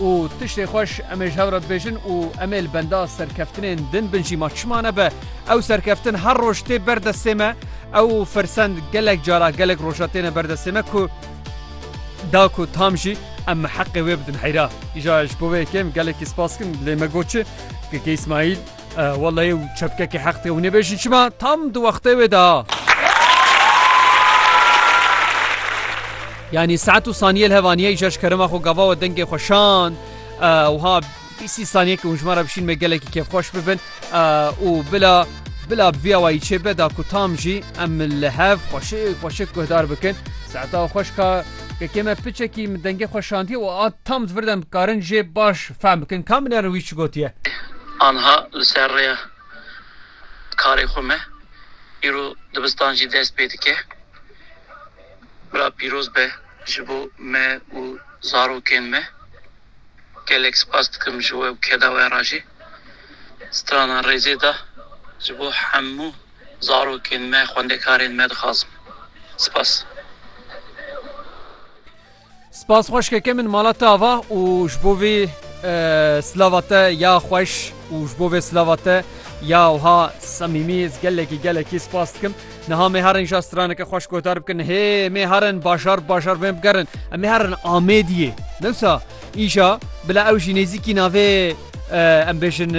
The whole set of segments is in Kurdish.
Û tiştê xweş em ê ji hev re bibêjin û em ê li benda serkeftinên din bin jî ma çima nebe ew serkeftin her roj tê ber destê me ew firsend gelek cara gelek roja têne ber destê me ku da ku tam jî em heqê wê bidin heyra. Îja ji bo vê yekêm gelekî spas kim lê me got çi? Keke Îsmaîl. Wela ew çepkekî heq dike hûn ê bêjin çima tam di wextê wê de. Yanî saet û saniyê li hevaniyê îja ji kerema xwe gava we dengê xwe şand wiha bîsî saniyekî hûn ji me re bişîn me gelekî kêfxweş bibin û bila bila viya wayî çê beda ku tam jî em li hev xweşik xweşik guhdar bikin saeta xweşka Kekê me piçekî min dengê xwe şandiye û a tam di vir de em dikarin jê baş fehm bikin. Ka min erin wî çi gotiye? Anha li ser rêya karê xwe me. Îro dibistan jî dest pê dike. Bila pîroz be ji bo me û zarokên me. Gelek spas dikim ji we û keda we re jî. Strana rêzê da ji bo hemû. zarokên me, xwendekarên me dixwazim. Spas. Spas xweşkeke min mala te ava û ji bo vê silava te ya xweş û ji bo vê silava te ya wiha semîmî ez gelekî gelekî spas dikim niha me herin ja straneke xweş guhdar bikin hê me herin bajar bajar bên bigerin em ê herin amêdiyê newsa îja bila ew jî nêzîkî navê Em bêjin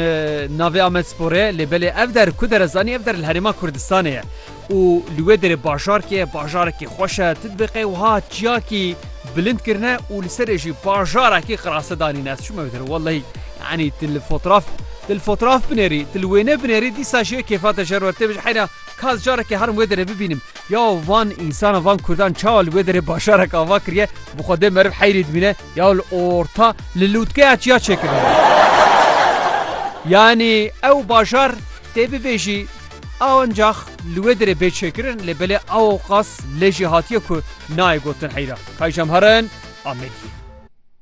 navê Amedsporê lê belê ev der ku dere zanî ev der li Herêma Kurdistanê ye û li wê derê bajarkê ye bajarekî xweş e tidbêqê wiha çiyakî bilind kirine û li serê jî bajarekî qirase danîne ez çûme wê derê wellehî yanî tu li fotraf tu li fotraf binêrî tu li wêne binêrî dîsa jê kêfa te jer wer tê bijî heyna ka ez carekê herim wê derê bibînim ya van însana van kurdan çawa li wê derê bajarek ava kiriye bi xwe dê meriv heyrî dibîne Ya li orta li lûtkeya çiya çêkirine. Yanî ew bajar tê bibêjî ancax li wê dirê bê çêkirin lê belê awqas lê jî hatiye ku nayê gotin heyra. Kayjamharin Amediyê.